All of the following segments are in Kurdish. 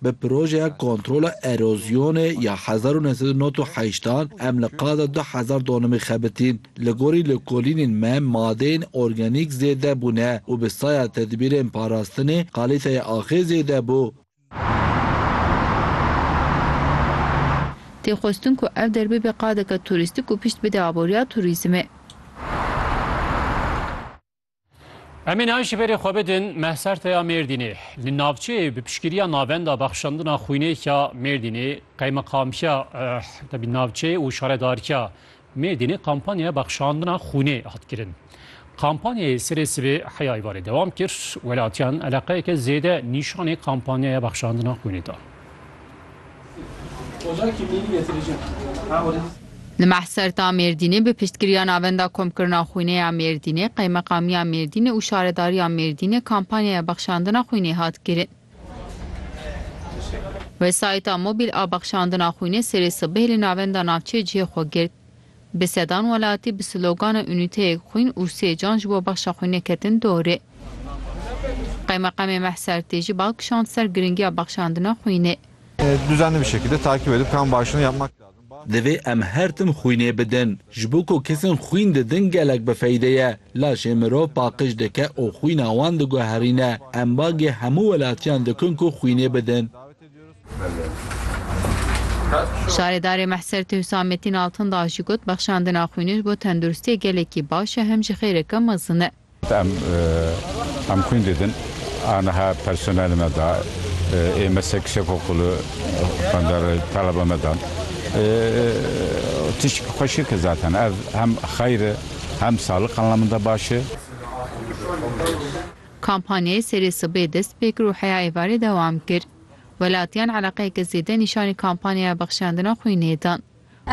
Bi projeya kontrola erozyonê ya hezar û neh sed û nod û heşt an em li qaza du hezar donimê xebitîn. Li gorî lêkolînên me madeyên organîk zêde bûne û bi saya tedbîrên parastinê kalîteyê axê zêde bû. Tê xwestin ku ev der bibe qadeke turîstîk û pişt bide aboriya turîzmê. Em ê niha ji berê xwe bidin Mehserteya Mêrdînê. Li navçeyê bi piştgiriya navenda bexşandina xwînêka Mêrdînê, qeymeqamkiya eh, navçeyê û şaredarkiya Mêrdînê kampanyaya bexşandina xwînê hat kirin. Kampanyayê serê sibê heya îvarê dewam kir, welatiyan eleqeyeke zêde nîşanê kampanyaya bexşandina xwînê da. Li Mehserta Mêrdînê bi piştgiriya Navenda Komkirina Xwînê ya Mêrdînê, Qeymeqamiya Mêrdînê û Şaredariya Mêrdînê kampanyaya bexşandina xwînê hat kirin. Wesayîta mobîl a bexşandina xwînê serê sibehê li Navenda Navçeyê cihê xwe girt. Bi sedan welatî bi slogana Unîteyek xwîn û sê can ji bo bexa xwînê ketin dorê. Qeymeqemê Meh Sertî jî bal kişand ser giringiya bexşandina xwînê. Divê em her tim xwînê bidin. Ji bo ku kesên xwîn didin gelek bi feyde ye. Laşê mirov paqij dike û xwîna wan diguherîne. Em bagê hemû welatiyan dikin ku xwînê bidin. Şaredarê Mehsertê Husamettin Altındağ jî got, Bexşandina xwînê ji bo tenduristiyê gelekî baş e hem jî xêreke mezin e. Em em xwîn didin a niha personelê me da ê me sek sek okulê xwendar taleba me dan tişt xweşik e zaten ev hem xeyr e hem saliq anlamında baş e. Kampanyayê serê sibê dest pê kir û heya êvarê dewam kir. Welatiyan eleqeyeke zêde nîşanî kampanyaya bexşandina xwînê dan.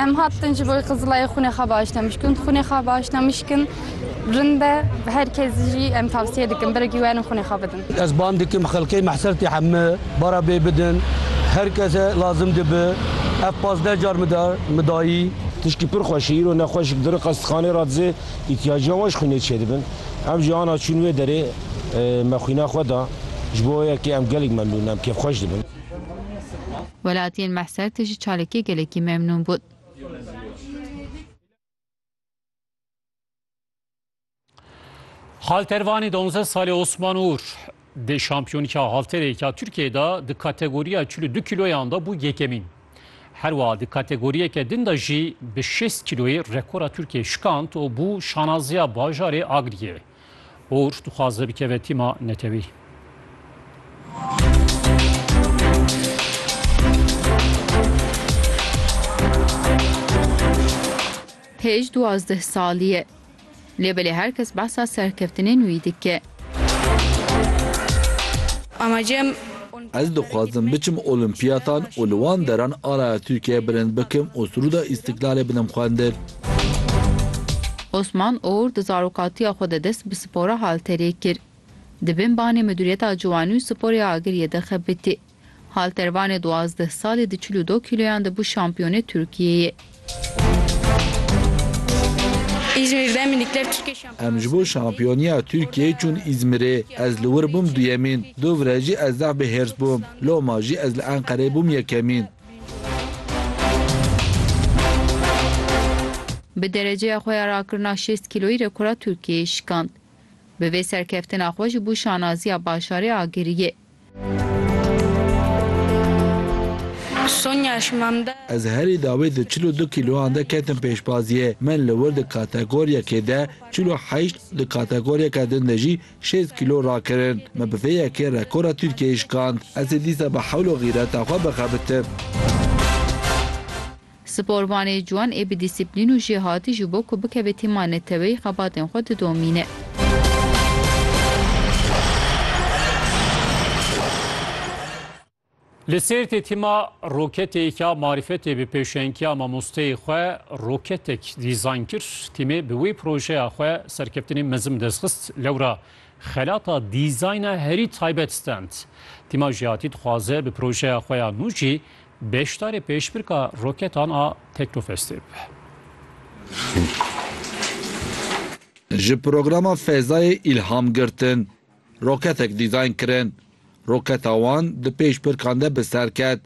Em hatin ji bo Qizilayê xwînê xwe baş ne mişkin, xwînê xwe baş ne mişkin rind e. Bi her kes jî em tavsiye dikin birekî werin xwînê xwe bidin. Ez bang dikim xelkê Mehsertê heme bara bê bidin. Her kese lazim dibi. Ev pazdeh car min da min dayî. Tişkî pir xweş e, îro nexweşik di riqestixanê re dizê, îtyaciya wan ji xwînê çêdibin. Em ji ana çûn wê derê me xwîna xwe da, ji bo wê yekê em gelek memnûn in, em kêfxweş dibin. Welatiyên Mehser tê ji çalakiyê gelekî memnûn bûn. Haltervanî donzdeh salî Osman Ûr. Di Şampiyonîka Halterê ya Tirkiyeyê de di kategoriya çil û du kîloyan de bû yekemîn. Her wiha di kategoriyeke din de jî bi şêst kîloyê rekora Tirkiyeyê şikand û bû şanaziya bajarê Agriyê. Uğur dixwaze bikeve tîma netewî. Pêj duwazdeh salî ye. Lê belê her kes behsa serkeftinên wî dike. Ez dixwazim biçim Olîmpiyatan û li wan deran araya Tirkiyeyê bilind bikim û Sûrûda Îstîklalê bidim xwendin. Osman Oğur di zarokatiya xwe de dest bi spora halterê kir. Di bin banê Midûriyeta Ciwanî û Sporê Agiriyê de xebitî. Haltervanê duwazdeh salî di çil û du kîloyan de bû şampiyonê Tirkiyeyê. Em ji bo şampiyoniya Tirkiyeyê çûn Îzmirê. Ez li wir bûm duyemîn. Du vire jî ez zaf bi hêrs bûm. Loma jî ez li Enqereyê bûm yekemîn. Bi dereceya xwe ya rakirina şêst kîloyî rekora Tirkiyeyê şikand. Bi vê serkeftina xwe jî bû şanaziya bajarê agiriyê. Ez herî dawî di çil û du kîloyan de ketim pêşbaziyê. Min li wir di kategoryekê de çil û heşt û di kategoryeke din de jî şêst kîlo rakirin. Me bi vê yekê rekora Tirkiyeyê şikand. Ez ê dîsa bi hewl û xîreta xwe bixebitim. Sporvanê ciwan ê bi dîsîplîn û jêhatî ji bo ku bikeve tîma neteweyî xebatên xwe didomîne. Li Sêrtê tîma roketeyê ke ya marîfetê bi pêşengîya mamosteyê xwe roketek dîzayn kir. Tîmê bi wê projeya xwe serkeftinên mezin bi dest xist. Lewra xelata dîzayna herî taybet stend. Tîma jêhatî dixwaze bi projeya xwe ya nû jî Beşdarê pêşbirka roketan a Teknofestê be. Ji programa Fezayê îlham girtin, roketek dîzayn kirin. Roketa wan di pêşbirkan de bi ser ket.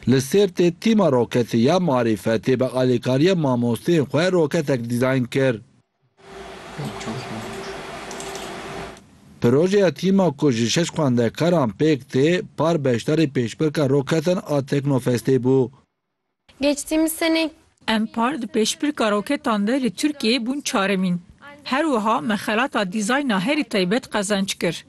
Li Sêrtê tîma roketî ya Marîfetê bi alîkariyê mamosteyên xwe roketek dîzayn kir. Projeya tîma ku ji şeş xwendekaran pêk tê, par beşdarê pêşbirka roketan a Teknofestê bû. Geçtîmiz senê. Em par di pêşbirka roketan de li Tirkiyeyê bûn çaremîn. Her wiha me xelata dîzayna herî taybet qezenç kir.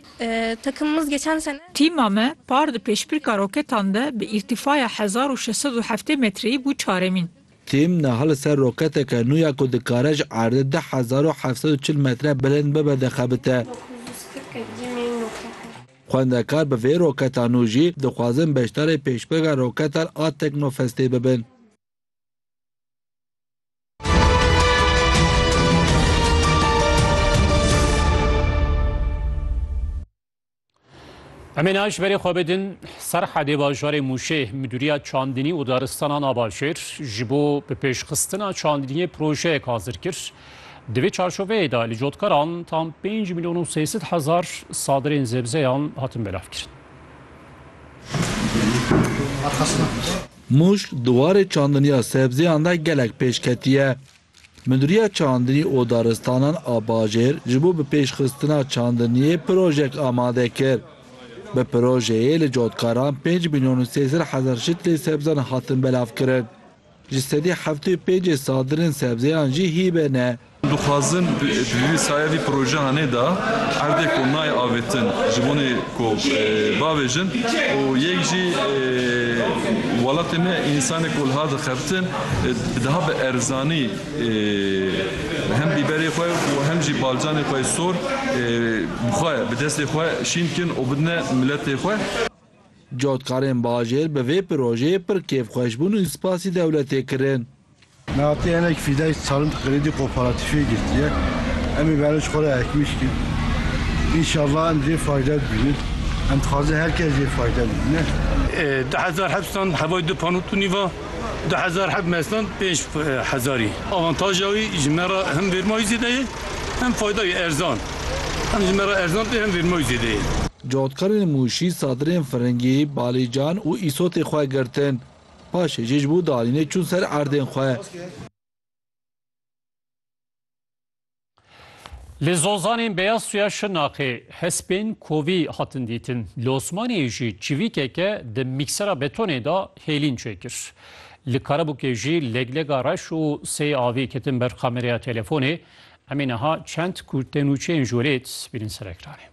Takımımız geçen sene. Tîma me par di pêşbirka roketan de bi îrtîfaya hezar û şeş sed û heftê metreyî bû çaremîn. Tim niha li ser roketeke nû ya ku dikare ji erdê du hezar û heft sed û çil metre bilind bibe dixebite. Xwendekar bi vê roketa nû jî dixwazin beşdarê pêşbirga roketan a Teknofestê bibin. Em ê naş berê xwe bidin Serhedê bajarê Mûşê Midûriya Çandinî û Daristana Navajêr ji bo bi pêşxistina çandiniyê projeyek hazir kir. Di vê çarçoveyê de li cotkaran tam 5 milyon û 300 hezar sadirên zebzeyan hatin belavkirin. Mûş di warê çandiniya sebzeyan de gelek pêş ketiye. Mudîriya Çandinî û Daristanan a Bajêr ji bo bi pêş xistina çandiniyê projek amade kir. Bi projeyê li cotkaran pênc mîlyon û sê sed hezar şitlê sebzan hatin belav kirin. Ji sedî heftê û pêncê sadirên sebzeyan jî hîbe ne. Dixwazin bi vî saya vî projehanê de erdê ku nayê avêtin ji bonê ku bavêjin û yek jî welatê me însanê ku liha dixebitin, Daha bi erzanî hem bîberê xwe û hem jî balcanê xwe yê sor bi xwe bi destê xwe şîn bikin û bidine miletê xwe. Cotkarên bajêr bi vê pirojeyê pir kêfxweş bûn û spasî dewletê kirin. Me hatî hinek fîdayî salind xredî koparatîfê girtiye. Em ê berê ji xwe re ekmî bikin. Înşallah em jê fayde bibînin. Em dixwazin her kes jê fayde bibîne. Di hezar heft san hevayî du panû tûnî va. Du hezar heb mestan pênc hezarî. Avantaja wî ji me re hem vêrmayî zêde ye hem fayda ye erzan. Hem ji me re erzan tê hem vêrmayî zêde ye. Cotkarên Mûşî sadirên firingî, balîcan û îsotê xwe girtin. Paşê jî ji bo danînê çûn ser erdên xwe. Li zozanên beyaz suya Şirnaqê hespên kovî hatin dîtin. Li Osmaniyê jî çivîkeke di mîksera betonê de hêlîn çêkir. Li Karabûkê jî leglega reş û sey avî ketin ber kamereya telefonê. Em ê niha çend ku tenûçeyên ji wê lê dît bînin ser ekranê.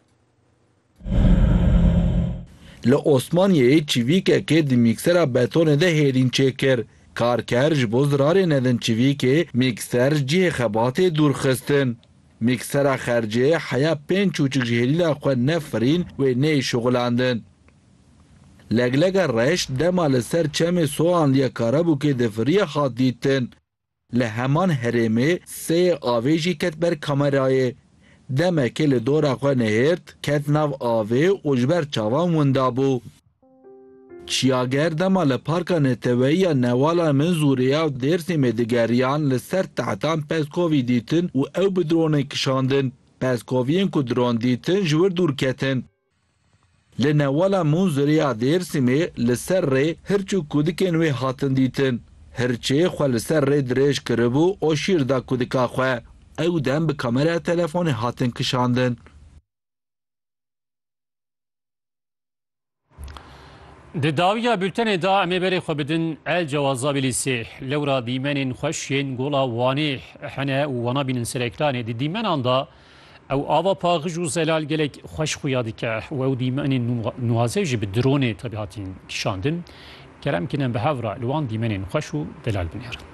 Li Osmaniyeyê çivîkekê di mîksera betonê de hêrîn çêkir. Karker ji bo zirarê nedin çivîkê, mîkser ji cihê xebatê dûr xistin. Mîksera xercê heya pênc çûçik ji hêlîna xwe nefirîn wê neyê şuxilandin. Leglega reş dema li ser çemê Soanliya Karabûkê difiriye hat dîtin. Li heman herêmê seyê avê jî ket ber kamerayê. Demekê li dora xwe nehêrt, ket nav avê û ji ber çavan winda bû. Çiyager dema li Parka Neteweyî ya Newalan Minzûrê ya Dêrsimê digeriyan li ser tehtan Peskovî dîtin û ew bi dronê kişandin. Peskoviyên ku dron dîtin ji wir dûr ketin. Li newala Munzurê ya Dêrsimê li ser rê hirç û kudikên wê hatin dîtin. Hirçê xwe li ser rê dirêj kiribû û şîr da kudika xwe. Ew dem bi kameraya telefonê hatin kişandin. Di dawiya bultenê de em ê berê xwe bidin El Cewazabî Lîsê. Lewra dîmenên xweş yên gola Wanê hene û wana bînin sereklanê. Di dîmenan de Ew ava paxij û zelal gelek xweş xuya dike. Wew dîmenên nuwaze jî bi dronê tevî hatin kişandin. Kerem kine bi hev re li wan dîmenên xweş û delal binêrin.